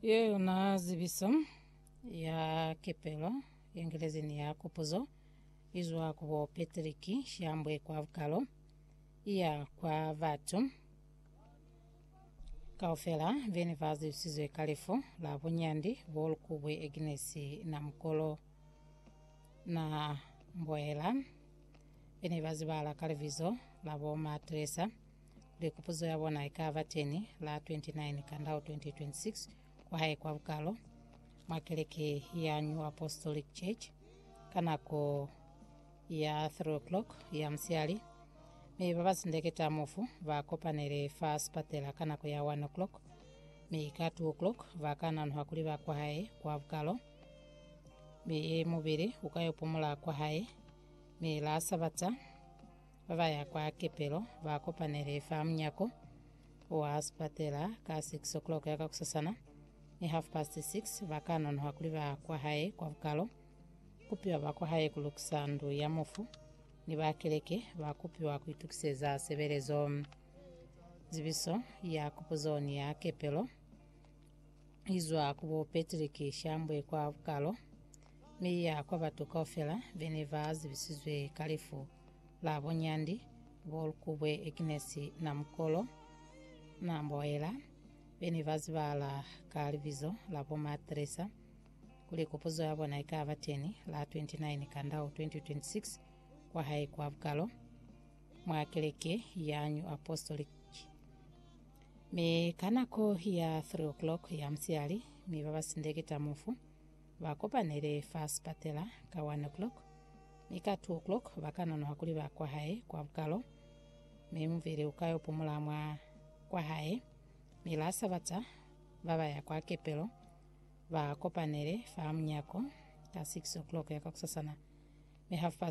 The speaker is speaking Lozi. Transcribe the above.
Ye yona zibiso ya kepelo yengelezi ni ya kupuzo izwa ku bo Patrick Shambwe kwa bukalo iya kwa batu kaufela bene ba zibisizwe ka lifu la bunyandi bo Lukubwe Agnes na mukolo na mboela bene ba zibala ka libizo la bo Matresa Be kupuzo ya bona ikaba teni la 29 Kandau 2026 kwahae kwa Bukalo mwa keleke ya New Apostolic Church ka nako ya 3 o'clock ya musiali mi ba basindeketa mufu ba kopanele fa sipatela ka nako ya 1 o'clock mi ka 2 o'clock ba ka nanuha kuli ba kwahae kwa Bukalo mi mubili ukayo pumula kwahae mi la Sabata Ba ba ya kwa kepelo ba kopanele fa munyako wa sipatela ka 6 o'clock ya ka kusasana. Ni half past 6 ba ka nonoha kuli ba kwa hae kwa bukalo. Kupiwa ba kwa hae ku lukisa ndu ya mufu, ni ba keleke ba kupiwa ku itukiseza sebelezo. Zibiso ya kupuzo ni ya kepelo izwa ku bo Patrick Shambwe kwa bukalo, mi ya kwa batu kaufela bene ba zibisizwe ka lifu la bunyandi bo lukubwe Agnes Namukolo na mboela be ne ba zibahala ka libizo la bo Ma Teresa kuli kupuzo ya bona ikaba teni la 29 Kandau 2026 kwa hae kwa Bukalo mwa keleke ya New Apostolic mi ka nako ya 3 o'clock ya musiali mi ba ba sindeketa mufu Ba kopanele fa sipatela ka one o'clock, mi ka two o'clock ba ka nonoha kuli ba kwa hae kwa bukalo, mi muvili uka yo pumula mwa kwa hae. Mi la Sabata ba ba ya kwa kepelo, ba kopanele fa munyako ka six o'clock ya kakusasana, mi half past